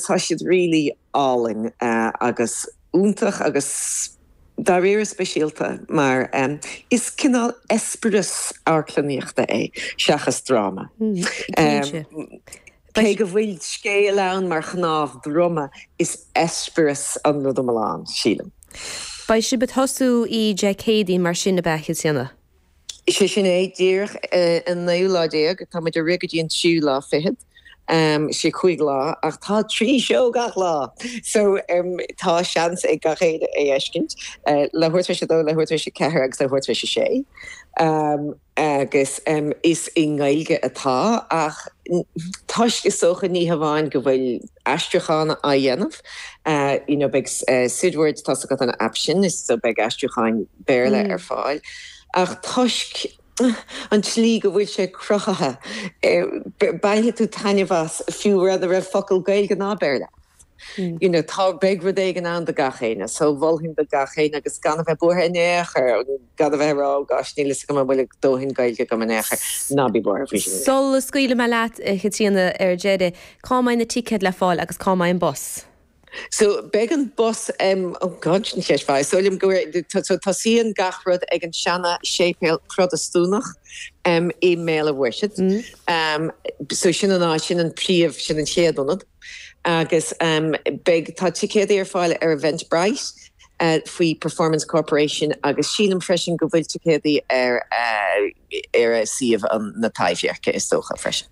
Tá siad really álainn agus iontach agus dáiríre speisialta mar is cineál eispéireas amharclannaíochta é seachas dráma. Cé go bhfuil scéal ann mar chnámh droma, is eispéireas an rud iomlán, sílim. Beidh sibh ag tosú Dé Céadaoin mar sin ab ea, a Chaitríona? Is é sin é, díreach an naoú lá déag, táimid ag rith go dtí an tríú lá fichead. Is é cúig lá, ach tá trí seó gach lá! So, tá seans ag gach éinne é fheiscint, leathuair tar éis a dó, leathuair tar éis a ceathair agus leathuair tar éis a sé. Agus is i nGaeilge atá, ach toisc, is dócha, ní hamháin go bhfuil aistriúchán á dhéanamh, you know, beidh Sibrwd, tá's agat an aip sin, so beidh aistriúcháin, Béarla ar fáil ach toisc an tslí go bhfuil sé cruthaithe, bainfidh tú taitneamh as fiú mura raibh focal Gaeilge ná Béarla ann. You know, tá, beidh rud éigin ann do gach éinne, so mholfainn do gach éinne agus gan a bheith buartha in aon chor, gan a bheith ag rá, oh gosh, níl a fhios agam an bhfuil dóthain Gaeilge agam in aon chor, ná bí buartha faoi sin. Sula scaoilfidh mé leat, a Chaitríona, ar deireadh, cá mbeidh na ticéid le fáil agus cá mbeidh an bus? So, beidh an bus em, oh God, sin ceist mhaith. Is dóigh liom go bhfuil, so tosaíonn gach rud ag an seana séipéal Protastúnach em i mBéal a' Mhuirthead. Em, so sin an áit, sin an príomh, sin an chéad ionad. Agus em beidh, tá ticéadaí ar fáil ar Eventbrite eh faoi Performance Corporation agus sílim freisin go bhfuil ticéadaí ar eh ar eh suíomh an, na Taibhdheirce is dócha freisin.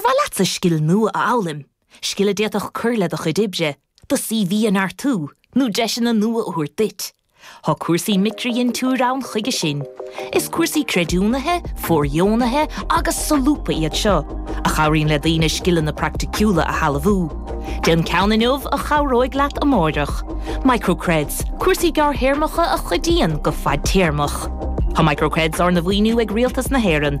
Ar mhaith leatsa scil nua a fhoghlaim, scil a d'fhéadfadh cur le do chuid oibre, do CV a neartú, nó deiseanna nua a thabhairt duit? Tá cúrsaí micridhintiúir ann chuige sin. Is cúrsaí creidiúnaithe, fóirdheonaithe agus solúbtha iad seo, a chabhraíonn le daoine scileanna praiticiúla a shealbhú. Déan ceann inniu a chabhróidh leat amárach. Microcreds, cúrsaí gearrthéarmacha a chuidíonn go fadtéarmach. Tá Microcreds arna mhaoiniú ag Rialtas na hÉireann.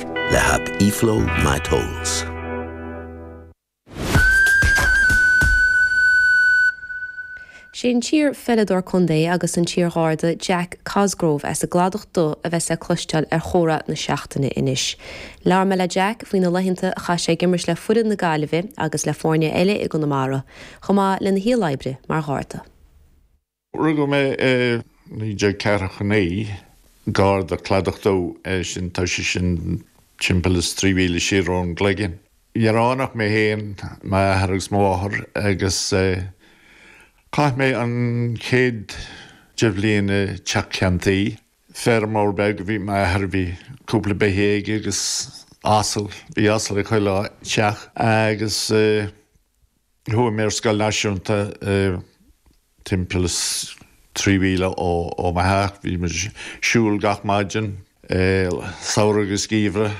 le haip eFlow My Tolls. Sé an t-iar-pheileadóir contae agus an t-iar-Gharda Jack Cosgrove as an gCladach Dubh a bheas le cloisteáil ar chomhrá na seachtaine anois. Labhair mé le Jack faoi na laethanta a chaith sé ag imirt le foireann na Gaillimhe agus le foirne eile i gConamara, chomh maith lena shaol oibre mar Gharda. Rugadh mé i 1949, gar do Cladach Dubh, eh sin, tá sé sin timpeall is trí mhíle siar ón gCloigeann. Ní raibh ann ach mé féin, m'athair agus mo mháthair, agus chaith mé an chéad deich bhliain i dteach ceann tuí. Feirmeoir beag a bhí m'athair, bhí cúpla beithígh aige agus asal, bhí asal ag chuile teach, agus. Chuaigh mé ar scoil náisiúnta timpeall is trí mhíle ó mo theach. Bhí muid ag siúl gach maidin, samhradh agus geimhreadh,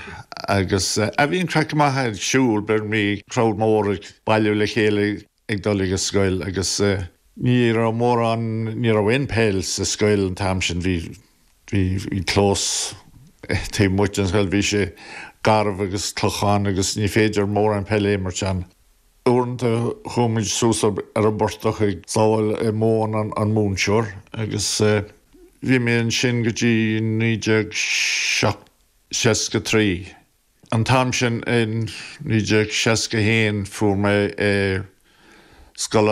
agus bhí an craic go maith ag siúl. Bhí crowd mór ag bailiú le chéile ag dul ag an scoil agus ní raibh mórán, ní raibh aon peil sa scoil an t-am sin. Bhí. bhí clós taobh amuigh den scoil, bhí sé garbh agus clochán agus ní féidir mórán peile a imirt ann. Uaireanta chuaigh muid suas ar an bportach ag sábháil móin an mhúinteoir agus bhí mé ansin go dtí naoi déag seasca trí. An t-am sin i naoi déag seasca haon fuair mé scoil